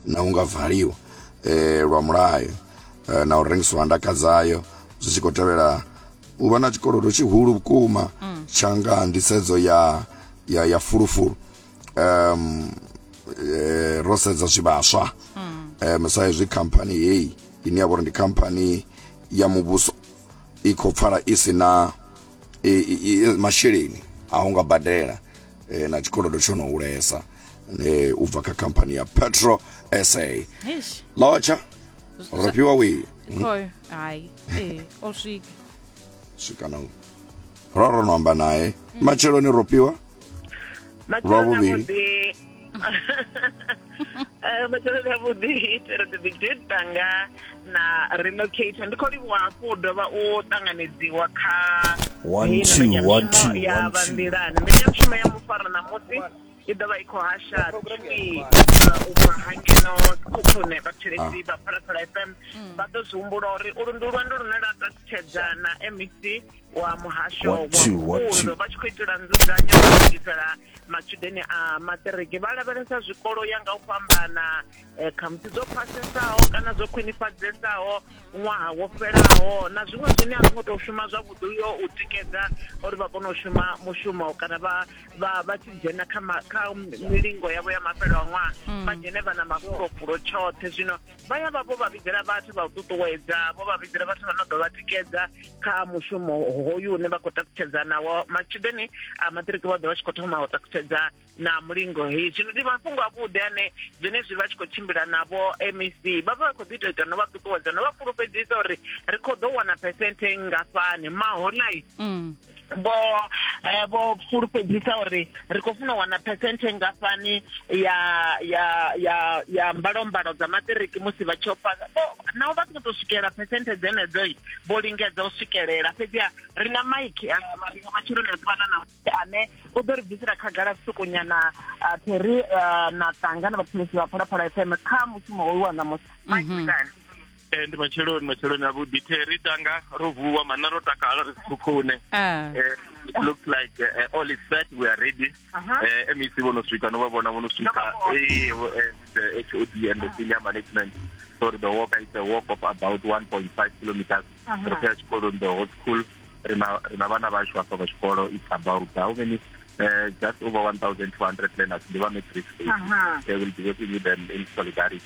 na u nga valiwa eh, lwa mulayo eh, na u rengisiwa ha ndaka dzayo zwi tshi khou tevhela u vha na tshikolodo tshihulu vhukuma mm. tsha nga nḓisedzo ya, ya, ya fulufulu um, eh, ro sedza zwivhaswa mm. um, sa izwi khamphani heyi ine ya vha uri ndi khamphani ya muvhuso i khou pfala i si na masheleni a u nga badela eh, na tshikolodo tsho no hulesa eh, u bva kha khamphani ya petro sa Eish, lotsha ro fhiwa wii khoyo hayi ee o swika swika na u ro ro no amba naye matsheloni ro fhiwa Matshelo Lwa vhuvhili. navhuḓi Eh, matshelo ndi avhuḓi itela the big date tanga na relocate ndi khou livhuwa hafhu u dovha u ṱanganedziwa kha One, heyi two, mbekanyamushumo one, two, ya one, vha two. nḓilani mbekanyamushumo ya mufara ṋamusi i ḓo vha i khou hasha tshifhi u bva hangeno khukhune vhathetshelesi vha phalaphala fm vha ḓo zwi humbula uri ulu ndi lwendo lune lwa ṱalutshedza na mec wa muhasho wa pfunzo vha tshi khou itela nzudzanyo u lugisela matshudeni a maṱiriki vha lavhelesa zwikolo ya nga u fhambana eh, khamusi dzo phasesaho kana zwo khwinifhadzesaho ṅwaha wo fhelaho na zwiṅwe zwine a zwi ngo tou shuma zwavhuḓi uyo u tikedza uri vha kone u shuma mushumo kana vha vha vha tshi dzhena kha kha milingo yavho ya mafhelo a ṅwaha hmm. vha dzhene vha na mafulofhulo tshoṱhe zwino vha ya vha vho vha vhidzela vhathu vha u ṱuṱuwedza vho vha vhidzela vhathu vha no ḓo vha tikedza kha mushumo hoyu une vha khou takutshedza nawo matshudeni a maṱiriki vha ḓo vha tshi khou thoma u takutshedza na mulingo hei zwino ndi mafhungo avhuḓi ane zwenezwi vha tshi khou tshimbila navho mec vha vha vha khou ḓi tou ita no vha ṱuṱuwedza no vha fhulufhedzisa uri ri khou ḓo wana phesenthe nngafhani maholai mm. vho eh, vho fulufhedzisa uri ri khou funa u wana phesenthe ngafhani ya ya ya ya mbalombalo dza maṱiriki musi vha tshi opa naho vha songo tou swikelela phesenthe dzenedzo vho lingedza u swikelela fhedziha ri na maiki eh, maringa matshiloni a ḓuvhana na ane u ḓo ri bvisela khagala sukunyana pheri eh, na tanga na vhathulisi vha phalaphala fm kha mushumo hoyu wa ṋamusi maiki mhm. Eh, ndi matsheloni matsheloni avhuḓi theri tanga ro vuwa mana ro takala ri sikhukhune ah. eh, it looks like uh, all is set we are ready uh -huh. uh, mec vho no swika no vha vhona vho no swika the hod and the senior management so the walk is a walk of about 1.5 kilometers uh -huh. ri khou ya tshikoloni the whole school ri na vhana vhashu hafha vha tshikolo it's about how many uh, just over 1200 learners ndi vha matric they will be working with them in solidarity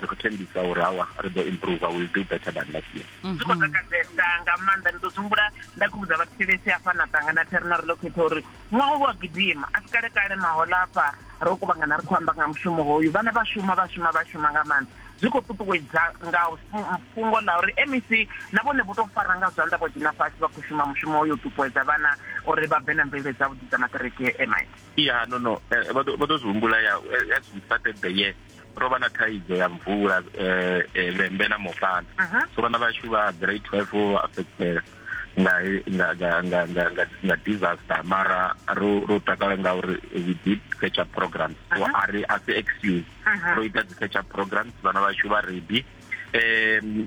ri khou thembisa uri hawa ri ḓo improve will do better than last year zwi mhm. khou takadzesa nga maanḓa ndi ḓo humbula nda khou vhudza vhathu thelesi hafha na ṱangana theri na ri ḽo khetha uri ṅwaha u wa gidima a si kale kale mahola hafha ro kuvhangana ri khou amba nga mushumo hoyu vhana vha shuma vha shuma vha shuma nga maanḓa zwi khou ṱuṱuwedza nga fhungo ḽa uri mec na vhone vho tou fara nga zwanḓa vho dzhena fhasi vha khou shuma mushumo uyo u ṱuṱuwedza vhana uri vha bve na mvelele dzavhuḓi dza maṱiriki emit ya no no eh, vha ḓo zwi humbula ya as we started the year ro vha na thaidzo ya mvula eh, eh, vhembe na mopana so vhana vhashu vha grade twelve vho vha affectela nga disaster mara ro ro takala nga uri we did catch up programs so a ri a si excuse ro ita dzi catch up programs vhana vhashu vha ready um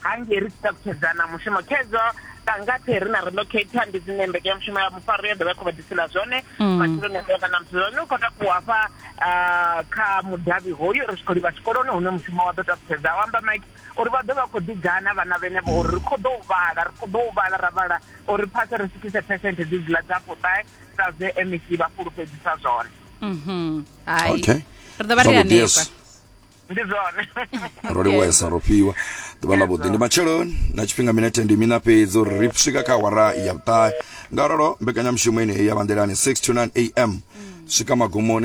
hange ri sita kutedzana mushumo kedzo kangate ri na relocator ndi dzine mbekanyamushumo ya mufaro yo dovha khou vha disela zwone mm. matshiloni a kana muthu zwone u khou takuwa hafha ah, kha mudavhi hoyu ri tshi khou livha tshikoloni hune mushumo wa ḓo takutedza wa amba mike uri vha ḓo vha khou ḓigana vhana vhenevho uri ri khou ḓo u vhala ri khou ḓo u vhala ra vhala uri phase ri swikise percent dzi dziḽa dza fuṱae sa zwe mec vha fhulufhedzisa zwone mhm. hai ri ḓo vha ri hanefha ndi zwone ro livhuesa ro fhiwa ḓuvha ḽa vhuḓi ndi matsheloni na tshifhinga minete ndi mina fhedzi uri ri swika kha awara ya vhuṱahe nga ralo mbekanyamushumo yeneyi ya vhanḓelani 6 to 9 am swika magumoni